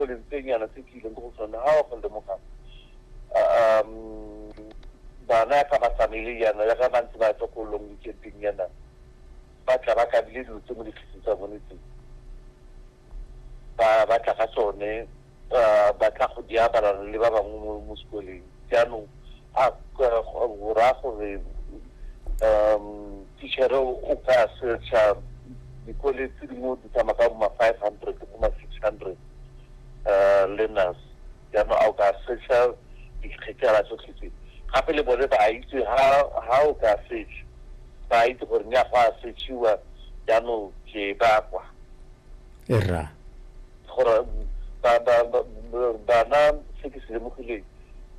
go le ntsenyana se ke ileng ko go sone ga go lemoga um bana ya ka ba famile yana ya ka ba ntse ba tlo ko long weekendeng yana ba tla ba kabile dilo tse mo ditlhiseng tsa bone tse ba ba tla ka tsone ba tla go di abalana le ba bangwe mo sekoleng jaanong a raya gore um teacher o ka searcha dikole tse dingwe di tsamaya ka boma five hundred ke boma six hundred um learners jaanong a o ka searcha dikgekela tsotlhe tse gape le bone ba itse ha o ka search ba itse gore nya go a searchiwa jaanong ke ba kwa era gore bana se ke se lemogileng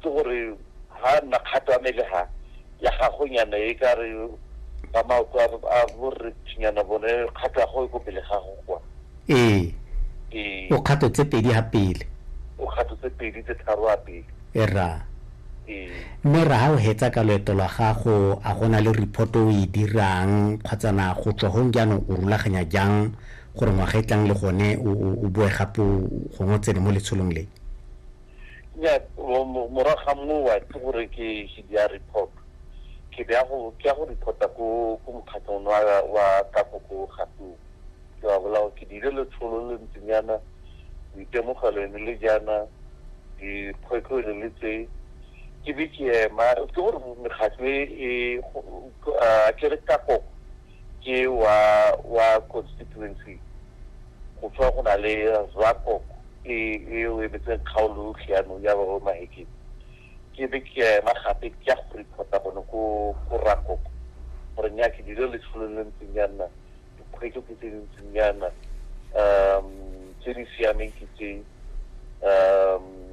ke gore ha nna kgato ya mele ha ya gago nyana e ka re ba maoto a borre tshinyana bone kgato ya go e ko pele ga go kwa ee ee o kgato tse pedi ha pele o kgato tse pedi tse tharo a pele e ra ee mme ra ha o hetsa ka loeto lwa gago a gona le report o e dirang kgotsa na go tswa gong jaanong o rulaganya jang gore ngwaga e tlang le gone o, o, o boe gape o- gongwe o tsene mo letsholong le nya morago ga moo wa itse gore ke ke dia report ke ya go ke ya go reporta ko ko mokgatlhong wa wa ka go go gato ke wa bolao ke dile le tsholo le ntsinyana ditemogelo ne le jana dikgwetlho ne le tse ke be ke ema ke gore mekgatlho e a ke re ka go ke wa wa constituency go tswa go na le Zako e e o emetseng kgaolo yotlhe yanong ya Roro Mahekeng ke be ke ya ema gape ke ya go reporta bone ko ko Rakoko gore nya ke dilo letsholo le ntseng ya nna dikgwetlho ke tse di ntseng ya nna um tse di siameng ke tse um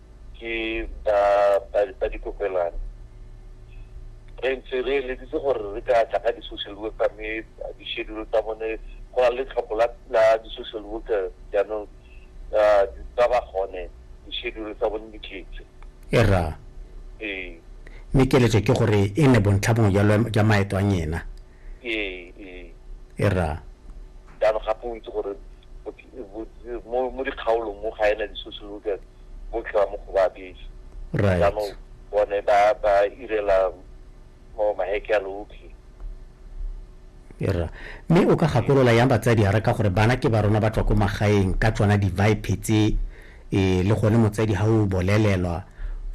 ke ba ba ba dikopelwane re ntse re eleditse gore re ka tla ka di-social worker mme di-schedule tsa bone go na le tlhopho la la di-social worker jaanong ah, di- ba ba gone di-schedule tsa bone di tletse e ra ee mme keletso ke gore e ne bontlha bongwe jwa lwa- jwa maeto a nyena e ra ya gape o itse gore mo dikgaolong mo ga ena di-social workers botlhe ba mo go ba bese jaanong bone ba ba irela mo maheke a lotlhe era mme o ka gakolola yang batsadi a re ka gore bana ke ba rona ba tswa ko magaeng ka tsona di-vipe tse Ee, le gone motsadi ha o bolelelwa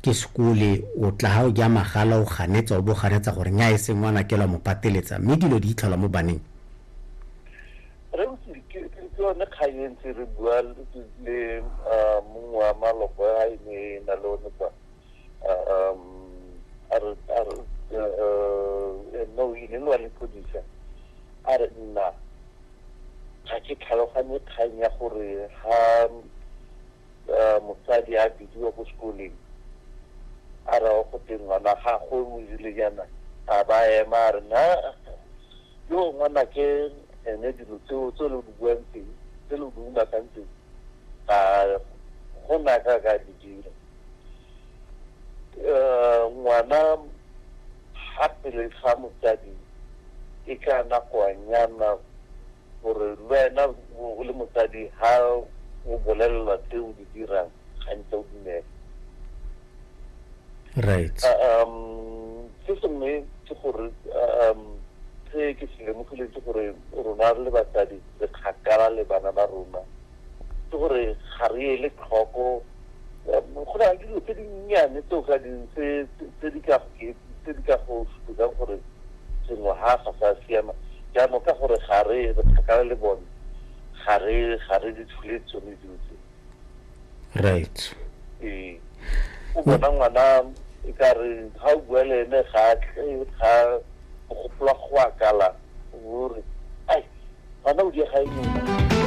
ke sekole, o tla ha o ja magala o ganetsa o bo ganetsa gore nya e se ngwana kelwa mo pateletsa mme dilo di itlhola mo baneng. Rausi, ke yone kgang e ntse re bua le mongwe wa maloko a e ne e na le one kwa no e ne le wa lepodisa a re nna Ga ke tlhaloganye kgang ya gore ha motsadi a bidiwa ko sekoleng a rawa go teng ngwana ga go o irile yana a ba ema a re na yo ngwana ke ene dilo tseo tse lo di buang teng tse lo di umakantseng a go na ka ka di dira um ngwana ga pele ga motsadi e ka nakoanyana gore le wena o le motsadi ga o bolelelwa tse o di dirang gantse o dumela right um se sengwe ke gore um se ke se lemogileng ke gore rona re le batsadi re kgakala le bana ba rona ke gore ga re ele tlhoko go na le dilo tse dinnyane tse o ka ding tse di ka go supetsang gore sengwe ha ga sa siama jaanong ka gore ga re re kgakala le bone ga re ga re di tshule tsone dilo tse right ee o bona ngwana e ka re ga o bua le ene ga ga gopola go akala gore ai ngwana o diega eng